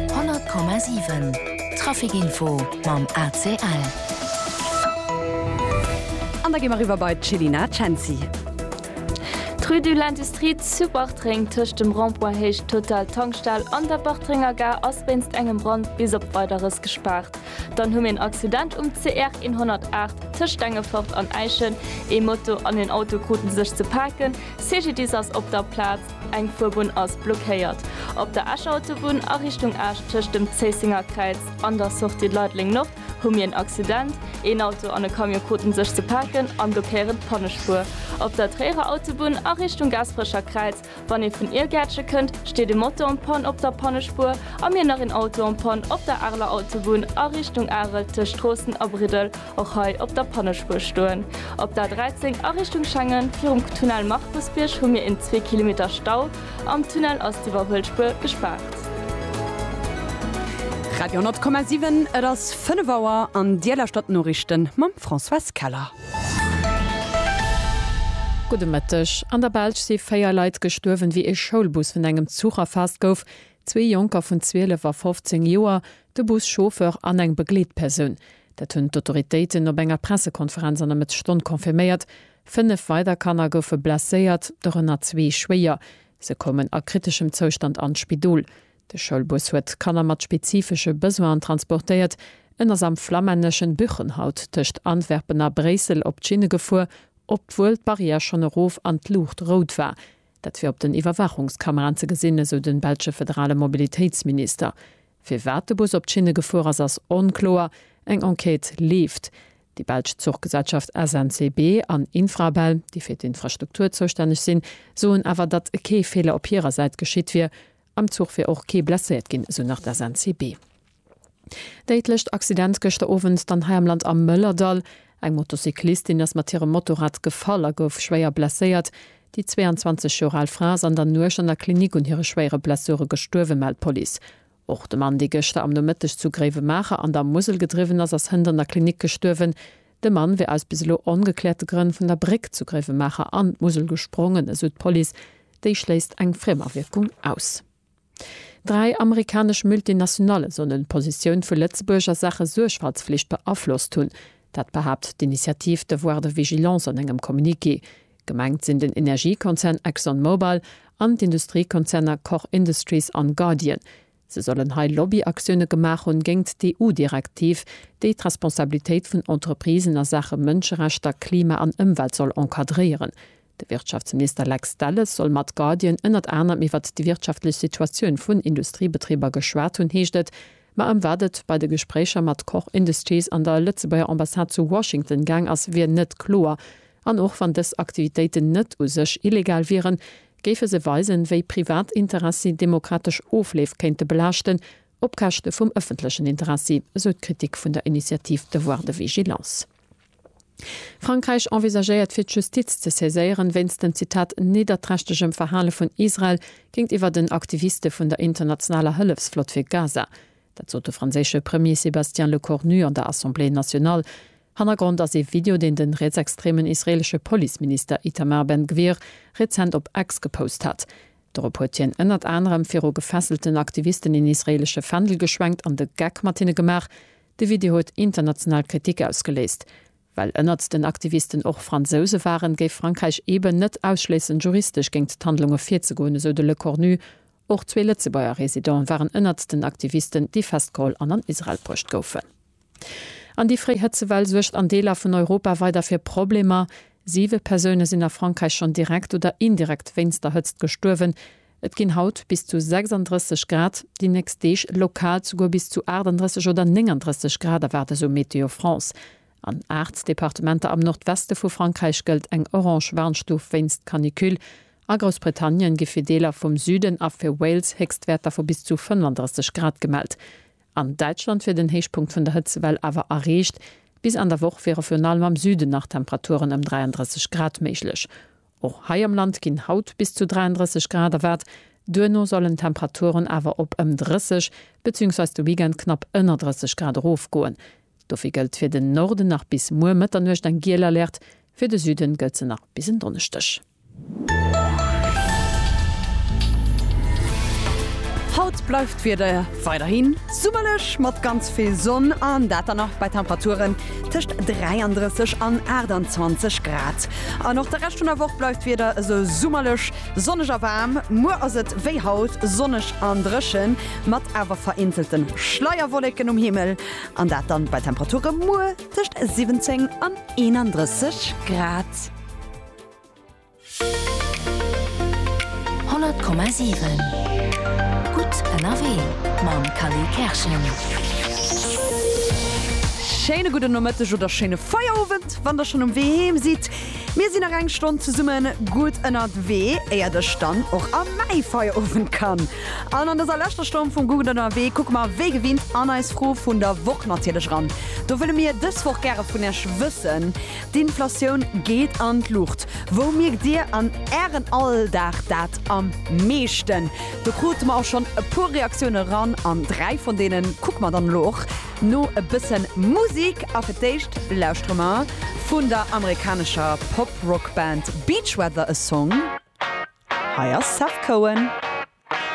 100,7 Traficinfo mam ACL. An da gi mer eriwwer bei d'Chelina Cenci. D'Rue de l'Industrie zu Bartreng tëscht dem Rond-point Héicht Total Tankstell an der Bartrenger Gare ass wéinst engem Brand bis op Weideres gespaart. Dann hu mir en Accident um CR 108 tëscht Stengefort an Äischen. Ee Moto an een Auto kruten sech ze paken. CGDIS ass op der Plaz. Eng Fuerbunn ass blockéiert. Op der Escher Autobunn a Richtung Esch tëscht dem Zéissenger Kräiz an der Sortie Leideleng Nord hu mir en Accident. Een Auto an e Camion kruten sech ze paken an blockéieren d'Pannespuer. Op der Tréierer Autobunn a Richtung Gaasperecher Kräiz, wann ee vun Iergäertche kënnt, steet e Moto en panne op der Pannespuer a mir nach een Auto en panne op der Areler Autobunn a Richtung Arel tëscht Stroossen a Briddel Och hei op der Pannespuer stoen. Op der 13 a Richtung Schengen virum Tunnel Markusbierg hu mir een zwee Kilometer Stau. Am Tunnel ass d'Iwwerhuelspuer gespaart. Radio 10,7, Et ass 5 Auer an Dir lauschtert d'Noriichten mam Françoise Keller. Gudde Mëtteg. An der Belsch si 4 Leit gestuerwen, wéi ee Schoulbus vun engem Zuch erfaasst gouf. Zwee Jonker vun 12 a 15 Joer, de Bus-Chauffeur an eng Begleetpersoun. Dat hunn d'Autoritéiten op enger Pressekonferenz an der Mëttesstonn confirméiert. Fënnef weider Kanner goufe blesséiert, dorënner zwee schwéier. Se koumen a kriteschem Zoustand an d'Spidol. De Schoulbus huet Kanner mat spezifesche Besoinen transportéiert. En ass am flammänneschen Buchenhout tëscht Antwerpen a Bréissel op d'Schinne gefuer, obwuel d'Barrière schonn erof an d'Luucht rout war. Dat wier op den Iwwerwaachungskameraen ze gesinn, esou de belsche federale Mobilitéitsminister. Firwat de Bus op d'Schinne gefuer ass, ass onkloer. Eng Enquête leeft. Déi belsch Zuchgesellschaft SNCB an Infrabel, déi fir d'Infrastruktur zoustänneg sinn, soen awer, datt kee Feeler op hirer Säit geschitt wier. Am Zuch wier och kee blesséiert ginn, esou nach d'SNCB. Déidlecht Accident gëschter Owend dann hei am Land am Mëllerdall. Eng Motocyclistin ass mat hirem Motorrad gefall a gouf schwéier blesséiert. Déi 22 Joer al Fra ass an der Nuecht an der Klinik un hire schwéiere Blessure gestuerwen, mellt d'Police. Och de Mann, dee gëschter am Nomëtteg zu Gréiwemaacher an der Musel gedriwwen ass, ass hënt an der Klinik gestuerwen. De Mann wier aus bis elo ongekläerte Grënn vun der Bréck zu Gréiwemaacher an d'Musel gesprongen, esou d'Police. Déi schléisst eng Friemerwierkung aus. Dräi amerikanesch Multinationale sollen d'Positioun vu Lëtzebuerg a Saache Suergfaltsflicht beaflosst hunn. Dat behaapt d'Initiative Devoir de Vigilance an engem Communiqué. Gemengt sinn den Energiekonzern Exxon Mobil an d'Industriekonzerner Koch Industries an Guardian. Se sollen hei Lobby-Aktioune gemaach hunn géingt d'EU-Direktiv, déi d'Responsabilitéit vun Entreprisen a Saache Mënscherechter, Klima an Ëmwelt soll encadréieren. De Wirtschaftsminister Lex Delles soll mat Guardian ënnert anerem iwwert déi wirtschaftlech Situatioun vun Industriebetriber geschwat hunn, heescht et. Ma ëm wat et bei de Gespréicher mat Koch Industries an der Lëtzebuerger Ambassade zu Washington gaang ass, wier net kloer. An och wann dës Aktivitéiten net u sech illegal wieren, géife se weisen, wéi privat Interessi demokratesch Ofleef kéinte belaaschten, op Käschte vum ëffentlechen Interessi, esou d'Kritik vun der Initiativ Devoir de vigilance. Frankräich envisagéiert fir d'Justiz ze saiséieren, wéinst den, Zitat, nidderträchtegem Verhale vun Israel géintiwwer den Aktiviste vun der internationaler Hëllefsflott fir Gaza. Dat sot de franséische Premier Sébastien Lecornu an der Assemblée nationale. Hannergrond ass ee Video, deen de rietsextremen israeelesche Policeminister Itamar Ben-Gvir rezent op X gepost hat. Dorop huet hien ënnert anerem viru gefesselten Aktivisten een israeelesche Fändel geschwenkt an de Geck mat hinne gemaach. De Video huet international Kritik ausgeléist. Well ënnert den Aktivisten och Fransouse waren, géif Frankräich eeben net ausschléissen, juristesch géingt d'Handlunge virzegoen, esou de Lecornu. Och zwee Lëtzebuerger Residente waren ënnert den Aktivisten, déi festgeholl an an Israel bruecht goufen. An déi fréi Hëtzewell suergt an Deeler vun Europa weider fir Problemer. Siwe Persoune sinn a Frankräich schonn direkt oder indirekt wéinst der Hëtzt gestuerwen. Et ginn haut bis zu 36 Grad, déi nächst Deeg lokal souguer bis zu 38 oder 39 Grad erwaart esou Météo France. An 8 Departementer am Nordweste vu Frankräich gëllt eng orange Warnstuf wéinst Canicule. A Groussbritannien gi fir Deeler vum Süden a fir Wales Héchstwäerter vu bis zu 35 Grad gemellt. An Däitschland wier den Héichpunkt vun der Hëtzewell awer erreecht. Bis Enn der Woch wiere virun allem am Süden nach Temperaturen ëm 33 Grad méiglech. Och hei am Land ginn haut bis zu 33 Grad erwaart, duerno sollen d'Temperaturen awer op ëm 30 bezüungsweis de Weekend knapp ënner 30 Grad erofgoen. Dofir gëllt fir den Norden nach bis muer Mëtternuecht eng giel Alerte, fir de Süden gëllt se nach bis en Donneschdeg. Haut bleift d'Wieder weiderhi summerlech mat ganz vill Sonn an dat dann nach bei Temperaturen, Tëscht 33 an 28 Grad an och de Rescht vun der Woch bleift d'Wieder esou summerlech, sonneg a waarm. Muer ass et wéi haut sonneg an dréchen, mat awer vereenzelte Schleierwolleken um Himmel an dat dann bei Temperature muer tëscht 17 an 31 Grad. 100,7 Gutt ënnerwee mam Kally Kerschen. Schéine gudden Nomëtteg oder schéine Feierowend, wann der schonn um Wee heem sidd. Mir sinn nach eng Stonn zesumme gutt ënnerwee, éiert ech dann och a mäi Feierowend kann. An an dëser leschter Stonn vum Gutt ënnerwee kucke mer wéi gewinnt an eis Fro vun der Woch natierlech eran. Do wëlle mir dës Woch gäre vun Iech wëssen, D'Inflatioun geet an d'Luucht. Wou mierkt Dir an Ären Alldag dat am meeschten? Do krute mer och schonn e puer Reaktioune eran an dräi vun deene kucke mer dann elo och. No e bësse Musik a fir d'éischt lauschtere mer vun der amerikanescher Pop-Rock-Band Beach Weather e Song. Hei ass Seth Cohen.